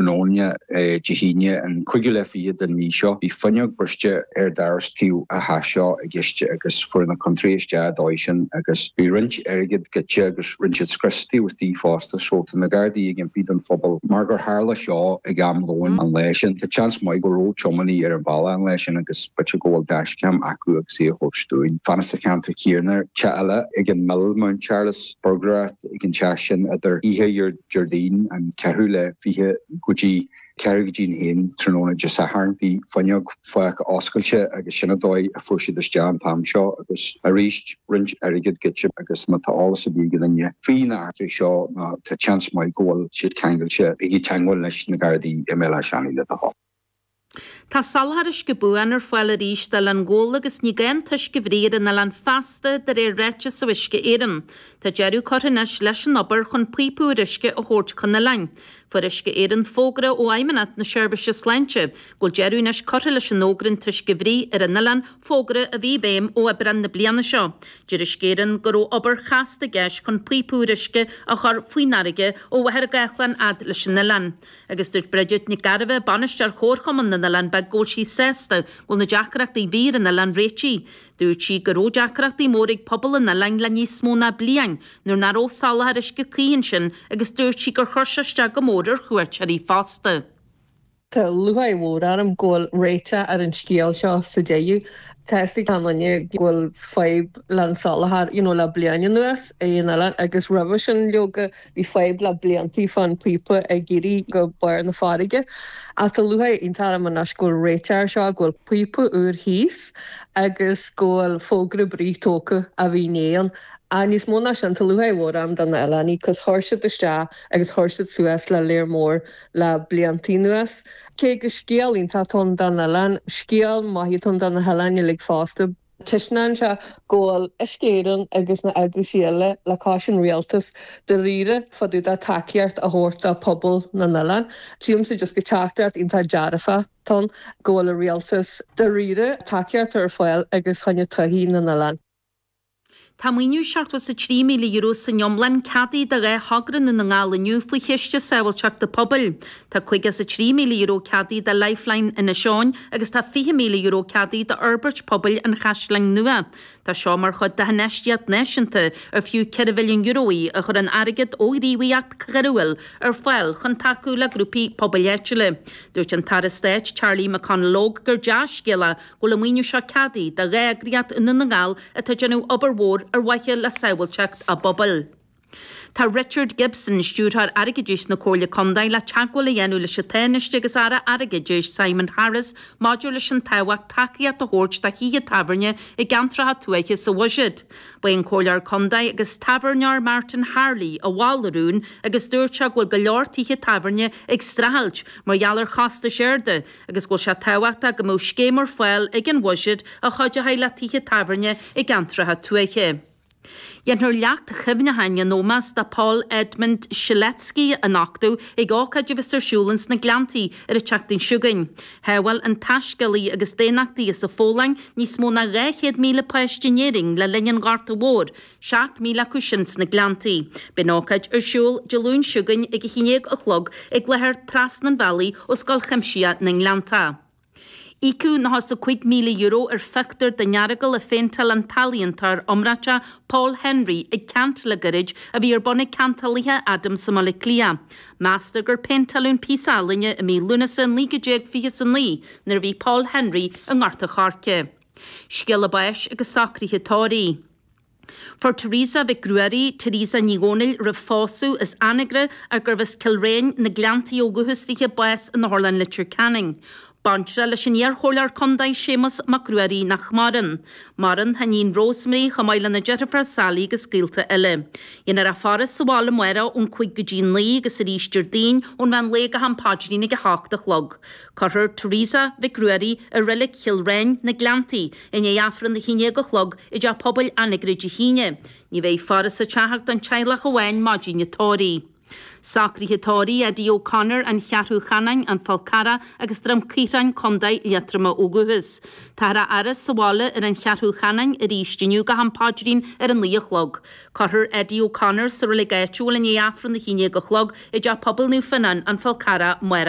am lóin Dé hAoine an 25ú den mhí seo. Bhí fuinneog briste ar doras tí atá seo i gceist agus fuair na ciontóirí isteach an dóigh sin agus bhí roinnt airgid goidte agus rinn siad scriosadh istigh fosta so tá na gardaí ag impí don phobal mar gur tharla seo ag am lóin an lae sin. Tá seans maith go raibh tiománaithe ar an bhealach an lae sin agus b'fhéidir go bhfuil dashcam acu agus í a thabhairt dúinn. Fanacht sa cheantar céanna. Teach eile ag an Mill, Mount Charles, buirgléireacht ag an teach sin idir oíche Déardaoin an ceathrú lá is fiche go dtí ceathrú go dtí a haon tráthnóna Dé Sathairn. Bhí fuinneog fágtha oscailte agus sin an dóigh a fuair siad isteach an t-am seo agus arís roinnt airgid goidte agus má tá eolas ar bith ag aon duine faoi na heachtraí seo nó tá seans maith go bhfuil siad ceangailte, bígí i dteagmháil leis na Gardaí i mBéal Átha Seanaidh le do thoil. Tá soláthar uisce buan ar fáil arís d'Oileán Ghabhla agus ní gá an t-uisce a bhruith ar an oileán feasta de réir ráiteas ó Uisce Éireann. Tá deireadh curtha anois leis an obair chun píopa úr uisce a thabhairt chun an oileáin. Fuair Uisce Éireann fógra ó Fheidhmeannacht na Seirbhíse Sláinte go bhfuil deireadh anois curtha leis an fhógra an t-uisce a bhruith ar an oileán, fógra a bhí i bhfeidhm ó Aibreán na bliana seo. Deir Uisce Éireann go raibh obair chasta i gceist chun píopa úr uisce a chur faoin fharraige ó Mhachaire Gathlán fhad leis an oileán. Agus dúirt Bridget Nic Gairbheith, Bainisteoir Chomharchumann na nOileán Beag, go bhfuil sí sásta go bhfuil na deacrachtaí a bhí ar an oileán réitithe. Dúirt sí go raibh deacrachtaí móra ag pobal an oileáin le níos mó ná bliain nuair nach raibh soláthar uisce cuí ansin agus dúirt sí gur chuir sé isteach go mór ar chuairteoirí fosta. Tá lúcháir mhór orm go bhfuil réiteach ar an scéal seo sa deireadh. Tá a fhios ag achan duine go bhfuil fadhb le an soláthar you know le bliain anuas ar an oileán agus roimhe sin leoga, Bhí fadhb le bliantaí fán píopa ag éirí go barr na farraige, ach tá lúcháir iontach orm anois go bhfuil réiteach air seo, go bhfuil píopa úr thíos agus go bhfuil fógra bruite tógtha a bhí ann. Ach níos mó ná sin, tá lúcháir mhór orm do na hoileánaigh, cos chuir siad isteach agus chuir siad suas le lear mór le bliantaí anuas. Cé gur scéal iontach atá ann do an oileán, scéal maith atá ann do na hoileánaigh uilig fosta. Taispeánann sé go bhfuil Uisce Éireann agus na heagrais eile agus an rialtas dáiríre fá dtaobh de tacaíocht a thabhairt do phobal na n-oileán. Sílimse just gur teachtaireacht iontach dearfach atá ann go bhfuil an rialtas dáiríre tacaíocht ar fáil agus choinne todhchaí na n-oileán. Tá maoiniú €73,000 san iomlán ceadaithe do dhá thogra i nDún na nGall inniu faoi Chiste Sábháilteachta Pobail. Tá €53,000 ceadaithe do Lifeline Inis Eoghain agus tá €20,000 ceadaithe d'fhorbairt pobail an Chaisleáin Nua. Tá seo mar chuid d'infheistíocht náisiúnta ar fiú €4 mhilliún í a chuireann airgead ó ghníomhaíocht choiriúil ar fáil chun tacú le grúpaí pobail áitiúla. Dúirt an tAire Stáit Charlie McConalogue gur dea-scéala bhfuil an maoiniú seo ceadaithe do dhá eagraíocht i nDún na nGall atá ag déanamh obair mhór ar mhaithe le sábháilteacht á bpobail. Tá Richard Gibson, Stiúrthóir Airgeadais na Comhairle Contae, le teagmháil a dhéanamh leis an Tánaiste agus Aire Airgeadais, Simon Harris, maidir leis an tábhacht tacaíocht a thabhairt do thithe tábhairne i gceantracha tuaithe sa bhuiséad. Ba é an Comhairleoir Contae agus tábhairneoir Martin Harley a mhol an rún agus dúirt sé go bhfuil go leor tithe tábhairne ag streachailt mar gheall ar chostais arda, agus go bhfuil sé tábhachtach go mbeadh scéim ar fáil ag an bhuiséad a chuideoidh le tithe tábhairne i gceantracha tuaithe. Déanfar leacht cuimhneacháin in ómós do Paul Edmund Strzelecki a nochtadh ag ócáid a bheas ar siúl ins na Gleanntaí ar an tseachtain seo chugainn. Shábháil an taiscéalaí agus daonnachtaí as an Pholainn níos mó ná 200,000 páiste in Éirinn le linn an Ghorta Mhóir 7 míle acu sin sna Gleanntaí. Beidh an ócáid ar siúl Dé Luain seo chugainn ag a haon déag a chlog ag láthair trasna an bhealaigh ó Scoil Chuimsitheach na nGleannta. Íocadh nócha is a cúig míle euro ar phictiúr den Earagail a phéinteáil an t-ealaíontóir iomráite Paul Henry ag ceant le gairid a bhí ar bun ag Ceantálaithe Adams i mBaile Átha Cliath. Meastar gur péinteáil an píosa ealaíne i mí Lúnasa 1929 nuair a bhí Paul Henry i nGort an Choirce. Scéala báis agus socruithe tórraimh. Fuair Teresa Mhic Ruairí, Teresa Ní Dhomhnaill roimh phósadh, as Anagaire ar gurbh as Cill Riáin, na Gleanntaí ó dhúchas di, bás in Otharlann Leitir Ceanainn. Baintreach leis an iar-chomhairleoir contae Séamus Mac Ruairí nach maireann. Maireann a hiníon Rosemary chomh maith lena deirfiúr Sally agus gaolta eile. Déanfar a faire sa bhaile amárach ón cúig go dtí naoi agus arís Déardaoin ón mheán lae go ham paidrín ag a hocht a chlog. Cuirfear Teresa Mhic Ruairí i reilig Chill Riáin, na Gleanntaí, i ndiaidh Aifreann a haon déag a chlog i dTeach Pobail Anagaire Dé hAoine. Ní bheidh faire sa teach ach don teaghlach amháin maidin an tórraimh. Socruithe tórraimh, Eddie O'Connor, An Cheathrú Cheanainn, An Fál Carrach agus Droim Caorthainn, Contae Liatroma ó dhúchas. Táthar á fhaire sa bhaile ar an Cheathrú Cheanainn arís inniu go ham paidrín ar a naoi a chlog. Cuirfear Eddie O'Connor sa reilig áitiúil i ndiaidh Aifreann a haon déag a chlog i dTeach Pobail Naomh Fionán, An Fál Carrach, amárach.